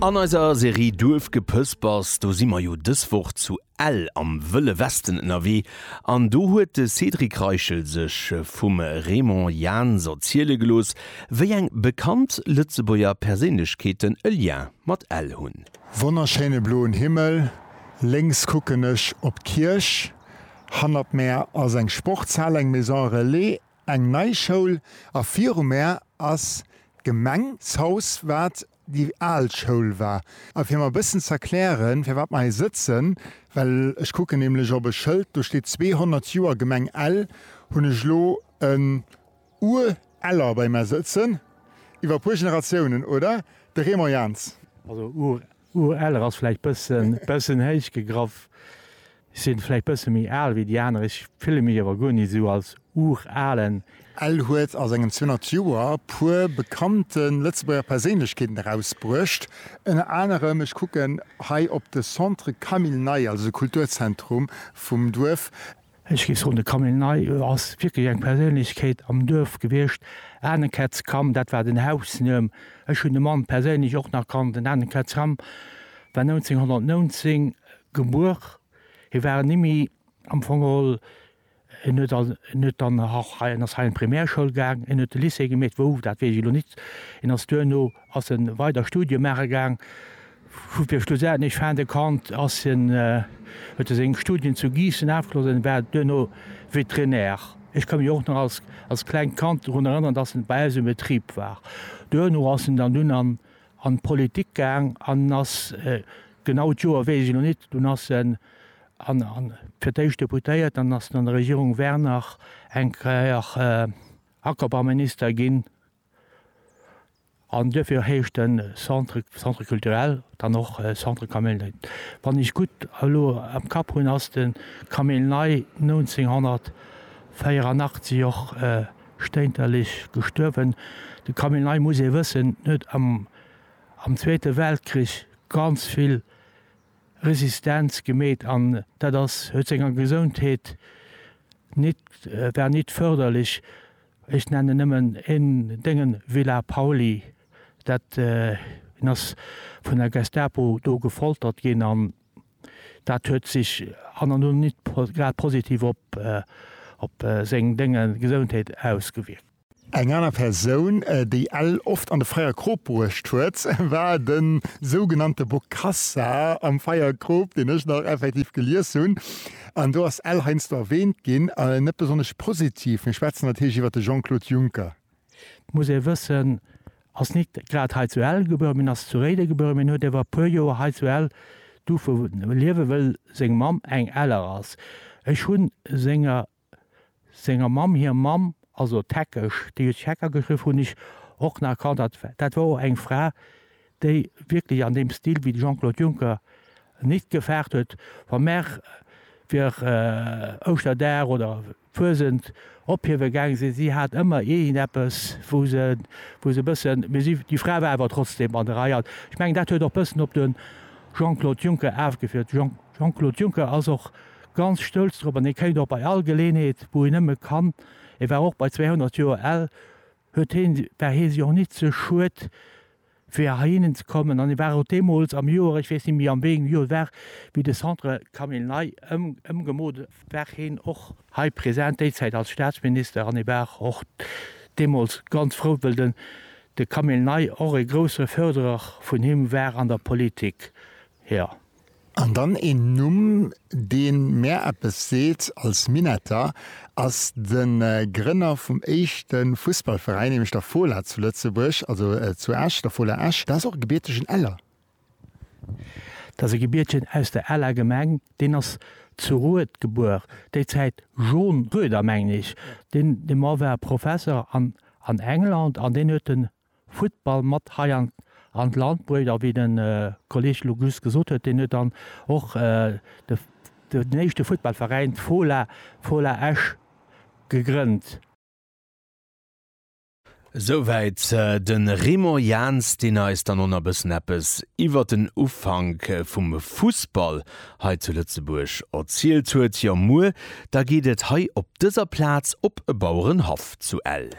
An eiser Serie Duerfgepëspers, do si mer jo dës Woch zu Ell am Wëlle Westen ënnerwee an do huet de Cédric Reichel sech vum Raymond Jans erziele gelooss, wéi eng bekannt Lëtzebuerger Perséinlechkeeten e Lien mat Ell hunn. Wonnerschéine bloen Himmel, lénks kucken ech op d'Kierch, hannert mär ass eng Sportshal, eng Maison relais. Eng nei Schoul a virum Är ass d'Gemeng, d'Haus wat déi al Schoul war. A fir mer e bëssen z'erklären, firwat mer hei sëtzen, well ech kucken nämlech op e Schëld, do steet 200 Joer Gemeng Ell, hunn ech elo en Ur-Eller bei mär sëtzen. Iwwer e puer Generatiounen, oder, de Raymond Jans? Also Ureller ass vläicht bëssen bëssen héich gegraff. Ech sinn vläicht bësse méi al wéi déi aner. Ech fille mech awer guer ni sou als Uralen. Ell huet a sengen 200 Joer puer bekannte Lëtzebuerger Perséinlechkeeten erausbruecht. Ënner anerem, ech kucken hei op de Centre Camille Ney, also de Kulturzentrum vum Duerf. Ech géif soen, de Camille Ney ass wierklech eng Perséinlechkeet am Duerf gewiescht. Anekätz Cam, dat war den Hausnuem. Ech hunn de Mann perséinlech och nach kannt. Den Anekätz Cam war 1919 gebuer. Hie war en Immi am Fong geholl. En huet an, en huet dann nach hei, en ass hei an d'Primärschoul gaang, en huet de Lycée gemeet, wou, dat weess ech elo nit. En ass duerno Ass en weider Studie maache gaang, vu fir schlussendlech fin de compte ass en, huet e seng Studien zu Giissen afgeschloss an war duerno Vétérinaire. Ech ka mech och nach als als klengt Kand drun erënneren, dass en bei eis um Betrib war. Duerno ass en dann dunn an an d'Politik gaang an ass genau d'Joer weess ech elo nit, dunn ass en an an fir d'éischt Deputéiert an ass an der Regierung Werner eng Kéier Ackerbauminister ginn. An duerfir heescht den Centre Centre culturel dann och Centre Camille Ney. Wann ech gutt elo am Kapp hunn, ass de Camille Ney 1984 och stéinterlech gestuerwen. De Camille Ney, muss ee wëssen, huet am am Zweete Weltkrich ganz vill Resistenz gemeet an dat ass huet senger Gesondheet nit war nit förderlech. Ech nennen nëmmen een, dengen Villa Pauly. Dat, hien ass vun der Gestapo do gefoltert ginn an dat huet sech an an un nit grad positiv op, op seng, dengen Gesoundheet ausgewierkt. Eng aner Persoun, déi ell oft an de Feierkrop bruecht huet, war de sougenannte Bokassa am Feierkrop, deen ech nach effektiv gelies hunn. An do ass ell heiansdo erwähnt ginn, net besonnesch positiv. Mir schwätzen natierlech iwwert de Jean-Claude Juncker. Et muss ee wëssen, ass nit grad hei zu Ell gebuer, mee ass zu Réiden gebuer, mee huet ewer e puer Joer hei zu Ell duerfe liewen, wëll seng Mamm eng Eller ass. Ech hunn senger senger Mamm hir Mamm, also d'Heckesch, déi huet sech Hecker geschriww, hunn ech och nach erkannt, dat, dat war och eng Fra, déi wierklech an deem Stil wéi de Jean-Claude Juncker nit gefaart huet, wa mer fir Ouschterdag oder Fuesent ophiewe gaange sinn, si hat ëmmer iergendeppes, wou se, wou se e bëssen, mee si, déi Fra war awer trotzdem an der Rei. An ech mengen, dat huet och bëssen op de Jean-Claude Juncker afgefiert. De Jean, Jean-Claude Juncker ass och Ganz stolz drop an hee kéint och bei all Geleenheet wou hien nëmme kann, e war och bei 200 Joer al, huet heen, war hee sech och nit ze schued fir heihinnen ze kommen an e war och deemools am Joer, ech weess nit méi an wéiengem Joer et war, wéi de Centre Camille Ney ëmgemoolt war heen och hei present, déi Zäit als Staatsminister an e war och deemools ganz frou wëll den de Camille Ney och e grousse Fërderer vun him war an der Politik, jo. An dann een Numm, dee mär eppes seet als Minetter, ass de Grënner vum éischte Fussballveräin, nämlech der Fola zu Lëtzebuerg, also zu Esch, der Fola Esch. Dat ass och e gebiertegen Eller. Dat ass e Gebiertegen aus der Eller Gemeng. Deen ass zu Rued gebuer, déi Zäit John Rueder, mengen ech. Dee Mann war Professer an England an deen huet de Futtball mat hei an an d'Land bruecht. A wéi de Kolleg elo just gesot huet, deen huet dann och de den éischte Futtballveräin, d'Fola, Fola Esch, gegrënnt. Esouwäit de Raymond Jans, deen eis dann och nach e bëssen eppes iwwert den Ufank vum Fussball hei zu Lëtzebuerg erzielt huet. Jo, muer da geet et hei op dëser Plaz op e Bauerenhaff zu Ell.